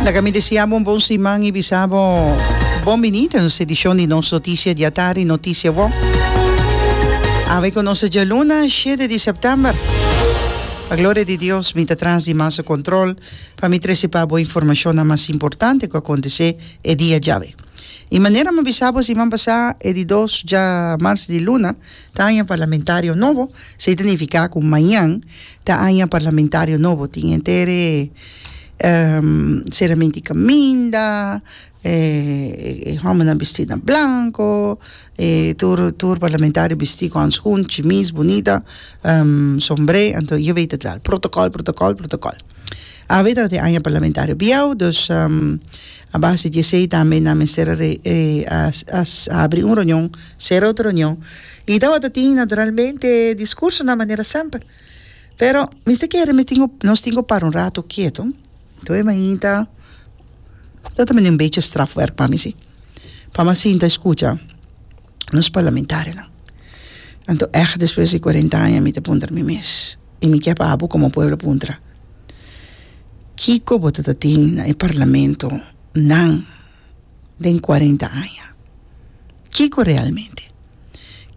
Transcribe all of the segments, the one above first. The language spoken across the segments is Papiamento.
Laga mi deseabo un bon siman i bisabo bon bini den nos edishon di nos Notisia di Atardi, Notisia Wou. Awe ku nos ta dje luna shete di sèptèmber. Pa gloria di Dios mi ta tras di Maso Kòntròl pa mi trese pa bo informashonnan mas importante ku a kontesé e dia djawe. I manera mi a bisabo siman pasá e di dos dja mars di luna ta haña parlamentario nobo, sa i ta nifiká ku mañan Ta aña parlamentario nobo, tin henter e seramenti caminda, e hombernan bisti na blanco, e tur tur parlamentario bisti cu handschoen, chimis bunita, sombre, anto je weet het wel, protocol, protocol, protocol. Awe ta e aña parlamentario biaw, dus a base di esey tambe nan mester a habri un reunion, cera otro reunion. I tabata tin naturalmente discursonan manera semper. Pero mester kere mi tin ku nos tin ku para un rato keto. Lo e mainta lo ta bini un bechi strafwerk pa mi si. Pa mi a sinta a eskucha nos parlamentarionan. Anto èg despues di kuarenta aña mi ta puntra mi mes, i mi ke pa abo komo pueblo puntra, kiko bo tabata tin na e parlamento nan den cuarenta aña. Kico realmente?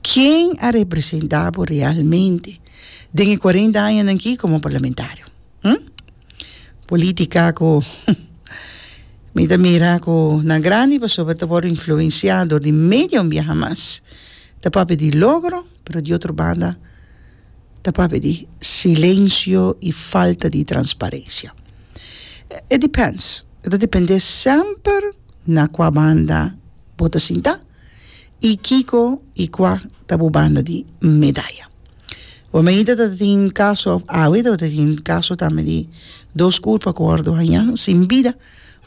Ken a representa bo realmente den e cuarenta añanan aki como parlamentario? Hm? Politica cu mi ta mira cu na grandi pasobra ta wor influencia dor di medio biaha mas ta papia di logro pero di otro banda ta papia di silencio y falta di transparencia. It depends, e ta depende semper na cua banda bo ta sinta y kico y cua ta bo banda di medaya. Bo meida ta tin caso, awe ta tin caso tambe di dos curpa cu wordo haña sin bida,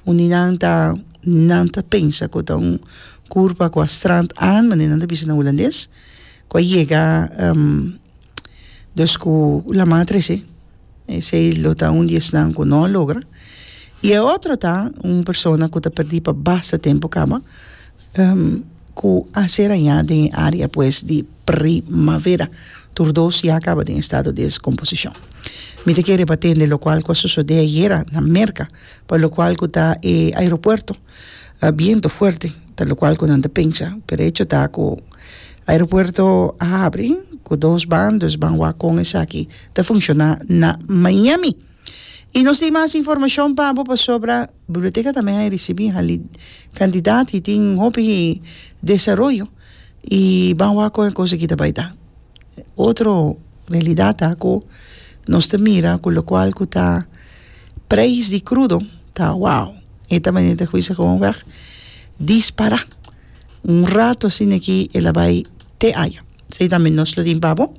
un di nan ta nan ta pensa cu ta un curpa cua strand aan, manera nan ta bisa na Hulandes. ku a yega dus ku la matre si esei lo ta un di esnan ku no a logra i e otro ta un persona ku ta perdí pa basta tempu kaba ku a ser hañá den e área pues di primavera tur dos ya kaba den estado di deskomposishon mi ta kere pa tende lokual ku a sosodé ayera na Merka pa lokual ku ta e aeropuerto a biento fuerte ta locual cu nan ta pensa pero e hecho ta cu aeropuerto a habri cu dos ban dus ban wak con esaki ta funciona na Miami y nos tin mas informacion pa bo pasobra biblioteca tambe a ricibi hali cantidad y tin hopi desaroyo y ban wak con e cos aki ta bay ta. otro realidad ta cu nos ta mira cu locual cu ta prijs di crudo ta wow e ta manera ta cuminsa gewoon weg dispara un rato asina aki e la bay te ayo esey tambe nos lo tin pabo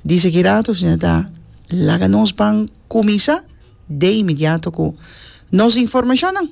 di seki rato asina ta laga nos ban cuminsa de inmediato cu nos informacionnan.